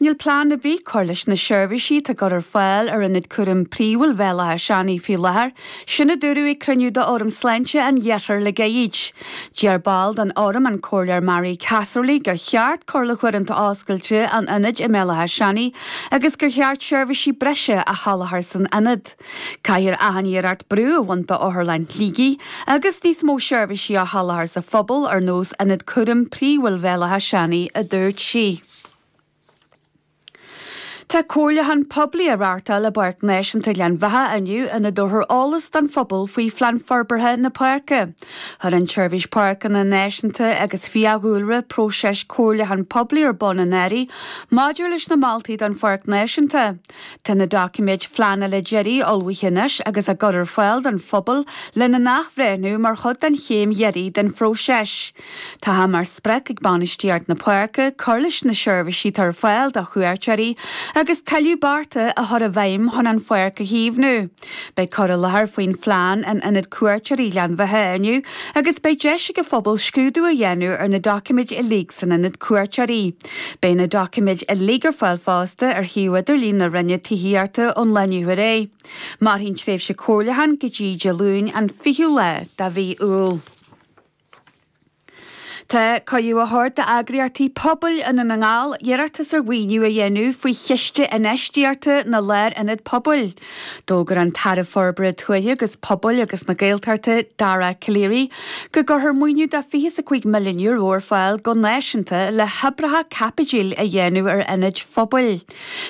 Níl plean ar bith cur leis na seirbhísí atá á gcur ar fáil ar ionad cúraim príomhúil Bhéal Átha Seanaidh faoi láthair, sin a dúradh ag cruinniú d'Fhóram Sláinte an Iarthair le gairid. D'iarr ball den Fhóram, an Comhairleoir Mary Casserly, gur cheart cur le huaireanta oscailte an ionaid i mBéal Átha Seanaidh agus gur cheart seirbhísí breise a sholáthar san ionad. Caithfear achan iarracht brú a bhaint d'Otharlann Shligigh agus níos mó seirbhísí a sholáthar sa phobal ar nós Ionad Cúraim Príomhúil Bhéal Átha Seanaidh, a dúirt sí. Tá comhairliúchán poiblí á reáchtáil i bPáirc Náisiúnta Ghleann Bheatha inniu ina dtabharfar eolas don phobal faoi phlean forbartha na páirce. Chuir an tSeirbhís Páirceanna Náisiúnta agus Fiadhúlra próiseas comhairliúcháin poiblí ar bun anuraidh maidir leis na moltaí don Pháirc Náisiúnta. Tá na doiciméid phleanála deiridh ullmhaithe anois agus á gcur ar fáil don phobal lena n-athbhreithniú mar chuid den chéim dheiridh den phróiseas. Tá sé mar sprioc ag bainistíocht na páirce cur leis na seirbhísí atá ar fáil do chuairteoirí agus tuilleadh bearta a chur i bhfeidhm chun an pháirc a chaomhnú. Beidh cur i láthair faoin phlean in Ionad Cuairteoirí Ghleann Bheatha inniu agus beidh deis ag an phobal scrúdú a dhéanamh ar na doiciméid uilig san Ionad Cuairteoirí. Beidh na doiciméid uilig ar fáil fosta ar shuíomh idirlín na Roinne Tithíochta ón lá inniu ar aghaidh. Mairfidh an tréimhse comhairliúcháin go dtí Dé Luain an 20ú lá de mhí Iúil. Tá cuireadh á thabhairt d'eagraíochtaí pobail i nDún na nGall iarratas ar mhaoiniú a dhéanamh faoi Chiste Infheistíochta na Lárionad Pobail. D'fhógair an tAire Forbartha Tuaithe agus Pobail agus na Gaeltachta, Dara Calleary, go gcuirfear maoiniú de €25 milliún ar fáil go náisiúnta le hoibreacha caipitil a dhéanamh ar ionaid phobail.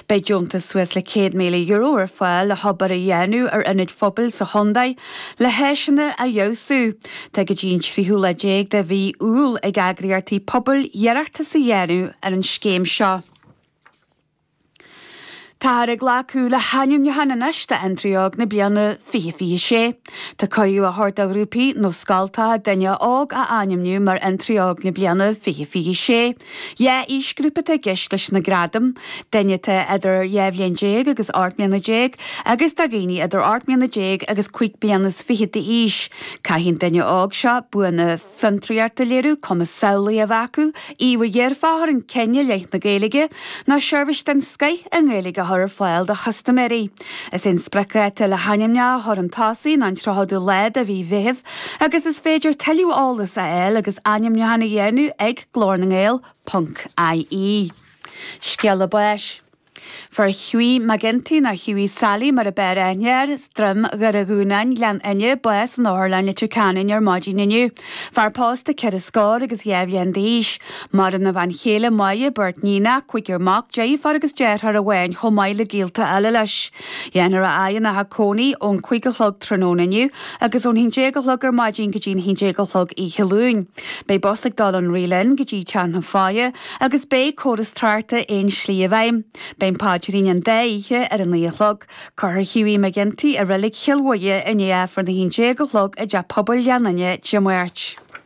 Beidh deontas suas le €100,000 ar fáil le hobair a dhéanamh ar ionaid phobail sa chontae le háiseanna a fheabhsú. Tá go dtí an tríochadú lá déag de mhí Iúil ag eagraíochtaí pobail iarratas a dhéanamh ar an scéim seo. Táthar ag glacadh le hainmniúcháin anois d'Fhiontraí Óg na Bliana 2026. Tá cuireadh á thabhairt do ghrúpaí nó scoltacha duine óg a ainmniú mar Fhiontraí Óg na Bliana 2026. Dhá aoisghrúpa atá i gceist leis na gradaim, daoine atá idir dhá bhliain déag agus ocht mbliana déag agus do dhaoine idir ocht mbliana déag agus cúig bliana is fiche d'aois. Caithfidh an duine óg seo buanna fiontraíochta a léiriú, cumas samhlaíoch a bheith acu, íomhá dhearfach a chur chun cinn i leith na Gaeilge, nó seirbhís den scoith i nGaeilge a chur ar fáil do chustaiméirí. Is é an spriocdháta le hainmneacha a chur chun tosaigh ná an tríochadú lá de mhí Mheithimh agus is féidir tuilleadh eolas a fháil agus ainmniúcháin a dhéanamh ag. Glór na nGael, punc, IE. Scéala báis. Fuair Hughie McGinty, nó Hughie Sally mar ab fhearr aithne air, as Droim Dhoire Dhúnáin, Gleann Fhinne, bás in Otharlann Leitir Ceanainn ar maidin inniu. Fear pósta ceithre scór agus dhá bhliain d'aois. Maireann a bhean chéile Máire, beirt níonacha, cúigear mac, deirfiúr agus deartháir amháin chomh maith le gaolta eile leis. Dhéanfar a fhaire ina theach cónaí ón cúig a chlog tráthnóna inniu agus ón haon déag a chlog ar maidin go dtí an haon déag a chlog oíche Luain. Beidh bus ag dul ón Reelin go dtí teach na faire agus beidh córas tráchta aon slí i bhfeidhm. Beidh an páidrín an dá oíche ar a naoi a chlog. Cuirfear Hughie McGinty i reilig Chill Mhuire i ndiaidh Aifreann a haon déag a chlog i dTeach Pobail Ghleann Fhinne Dé Máirt.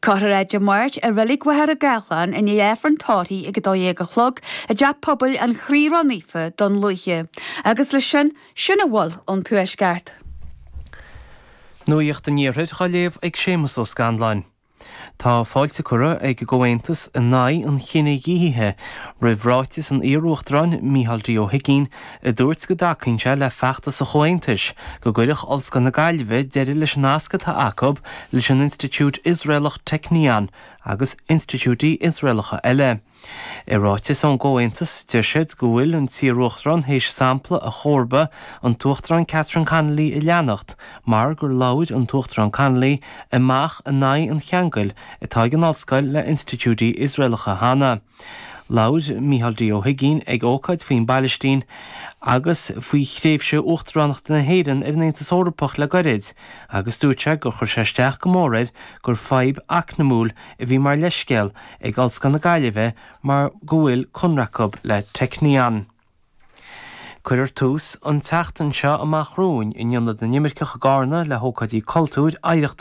Cuirfear é Dé Máirt i Reilig Mhachaire Gathlán i ndiaidh Aifreann tórraimh ag 12 a chlog i dTeach Pobail an Chroí Ró-Naofa Dún Lúiche agus le sin sin a bhfuil ón Tuaisceart. Nuacht an Iarthair á léamh ag Séamus Ó Scanláin. Tá fáilte curtha ag an gComhaontas in Aghaidh an Chinedhíothaithe roimh ráiteas an iar-Uachtaráin Micheál D Ó hUigínn a dúirt go dtacaíonn sé le feachtas an Chomhaontais go gcuirfeadh Ollscoil na Gaillimhe deireadh leis an nasc atá acu leis an institiúid Iosraelach Technion agus institiúidí Iosraelacha eile. I ráiteas ón gComhaontas, deir siad go bhfuil an t-iaruachtarán théis sampla a chomharba, an tUachtarán Catherine Connolly, a leanacht mar gur labhair an tUachtarán Connolly amach in aghaidh an cheangail atá ag an ollscoil le institiúidí Iosraelacha cheana. Labhair Micheál D. Ó hUigínn ag ócáid faoin bPailistín agus faoi thréimhse Uachtaránachta na hÉireann ar an Aontas Eorpach le gairid agus dúirt sé gur chuir sé isteach go mór air gur fadhb eacnamúil a bhí mar leithscéal ag Ollscoil na Gaillimhe mar go bhfuil conradh acu le Technion. Cuirfear tús an tseachtain seo amach romhainn in Ionad na nImirceach i gCarna le hócáidí cultúir, oidhreachta,